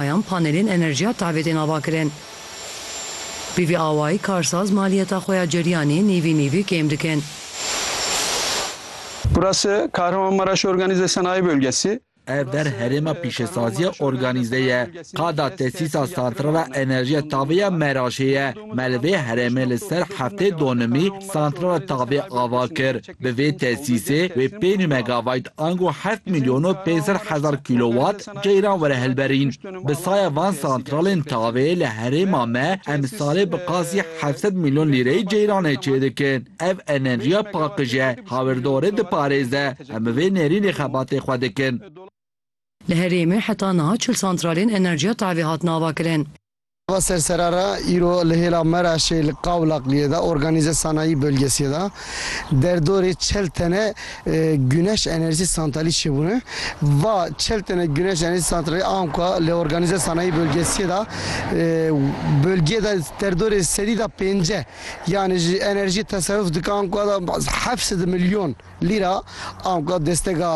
Heyan panelên enerjiya tavê tên avakirin. Bi vî awayî karsaz maliyeta xwe ya ceryanê nîvî nîvî kêm dikin. Burası Kahramanmaraş Organize Sanayi Bölgesi. Ev der herêma pîşesaziya organîze ye. Qada tesîsa santrala enerjiya tavê ya Meraşê ye. Me li vê herêmê li ser heftê donimî santrala tavê ava kir. Bi vê tesîsê wê pênc megawayt ango heft mîlyon û pênc sed hezar kîlowat, Ceyran were hilberîn, bi saya van santralên tavê li herêma me em salê bi qasî heft sed mîlyon lîreyê ceyranê çêdikin. Ev enerjiya paqij e, hawirdorê diparêze. Em bi vê nêrînê xebatê xwe dikin. Li herêmê heta niha çil santralên enerjiya tavê hatin avakirin. Nava sersera re îro li hêla Meraşê li Qawlaqliyê de Organize Sanayi Bölgesiê de derdorê çel tene Güneş Enerji Santralî çêbûne. Va çel tene Güneş Enerji Santralî an ku li Organize Sanayi Bölgesiê de bölgeyê de derdorê sedî de pênce yanê ji enerjiyê teseruf dike an ku heft sed milyon Lîra anka destega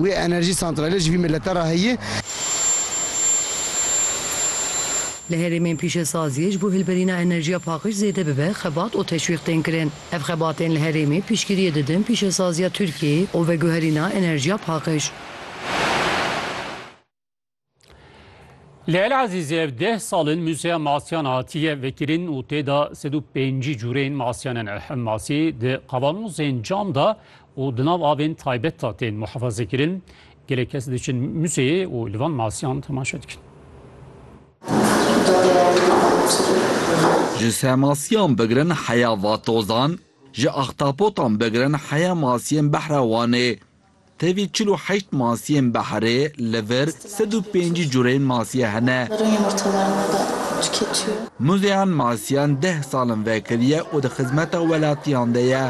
wê enerjî santralê ji vî milete re heye. Li herêmên pîşesaziyê ji bo hilberîna enerjiya paqij zêde bibe xebat û teşwîq tên kirin. Ev xebatên li herêmê piştgiriyê didin pîşesaziya Tirkiyeyê û veguherîna enerjiya paqij. Li El Ezîzê ev deh sal in Muzeya Masyan hatiye vekirin û tê de sed û pêncî cûrên masyan in. Ev masî di qavanozên cam de û di nav avên taybet de tên muhefazekirin. Gelek kes diçin muzeyê û li van masiyan temaşe dikin. Ji semasiyan bigirin heya vatozan, ji axtapotan bigirin heya masiyên behra Wanê, Tevî çil û heşt masiyên behrê li vir sed û pêncî cureyên masiye hene. Muzeyan masiyan deh sal in vekiriye û di xizmeta welatiyan de ye.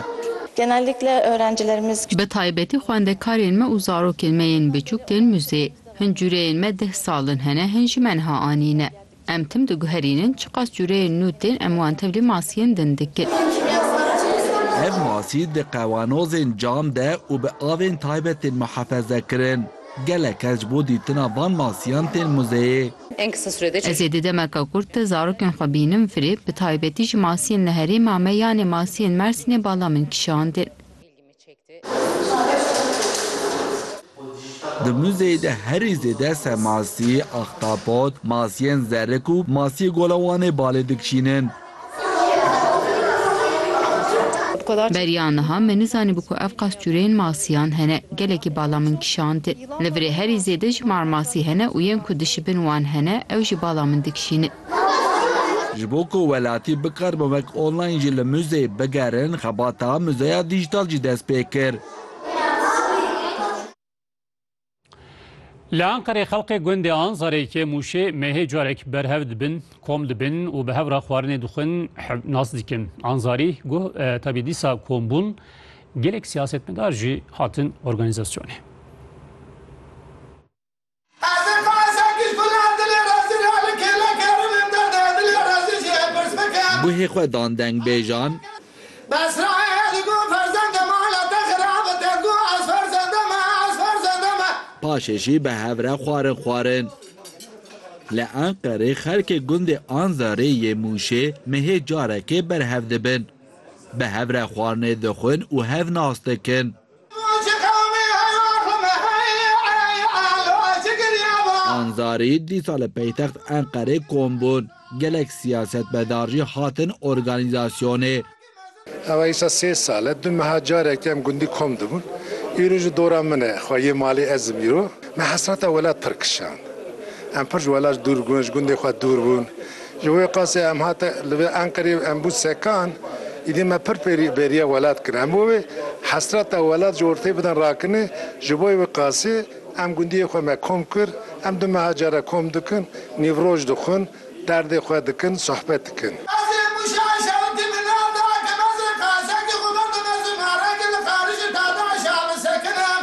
Bi taybetî xwendekarên me û zarokên me yên biçûk tên muzeyê. Hin cureyên me deh sal in hene, hin ji me niha anîne. Em tim diguherînin çiqas cûreyên nû tên em wan tevlî masiyên din dikin. Ev masî di qewanozên cam de û bi avên taybet tên muhefeze kirin. Gelek kes ji bo dîtina van masiyan tên muzeyê. Ez ê di demeke kurt de zarokên xwe bînim firê, bi taybetî ji masiyên li herêma me yanê masiyên Mersînê bala min kişandin. Di muzeyê de herî zêde ser masî, axtapot, masiyên zerik û masiyê Gola Wanê balê dikişînin. Beriya niha me nizanîbû ku ev qas cureyên masiyan hene. Gelekî bala min kişand. Li virê herî zêde ji mar masî hene û yên ku dişibin wan hene, ew jî bala min dikişînin. Ji bo ku welatî bikar bi wek online jî li muzeyê bigerin, xebata muzeya dîjîtal jî dest pê kir. Li Enqerê xelkê gundê Anzarê, Kêmûşê, Mehê carek berhev dibin, kom dibin û bi hev re xwarinê dixwin, hev nas dikin. Anzarî got tevî dîsa kom bûn gelek siyasetmedar jî hatin organîzasyonê. Ez ê behsa kiştina dilê rezî re li kêlek herim ên derdê dilê rezî jî ê pirs bikim. Guhê xwe dan dengbêjan. Besraye li got ferzendê me li te xirab tê got ez ferzendê me ez ferzendê me. Paşê jî bi hev re xwarin xwarin. Li Enqerê xelkê gundê Anzarê yê Mûşê mehê carekê berhev dibin. Bi hev re xwarinê dixwin û hev nas dikin. Anzarî dîsa li peytext Enqerê kom bûn. Gelek siyasetmedar jî hatin organîzasyonê. Ew îsa sê sal e. Du meha carek em gundî kom dibûn. Îro ji dora min e. Xwe yê malê ez im îro. Me hesreta welat pir kişand. Em pir ji welat dûr bûn, ji gundê xwe dûr bûn. Ji wê qasê em hate li vê Enqerê em bû sekan, îdî me pir bêriya welat kir. Em bû wê hesreta welat ji ortê bidin rakinê. Ji bo wê qasê em gundiyê xwe me kom kir. Em du meha care kom dikin, nîvroj dixwin, derdê xwe dikin, sohbet dikin. Ez ê Mûşa Eşawitî min nav da ke ez ê qasekê xwe berdome zimarekê li Xarij û Tade Eşawi sekinim.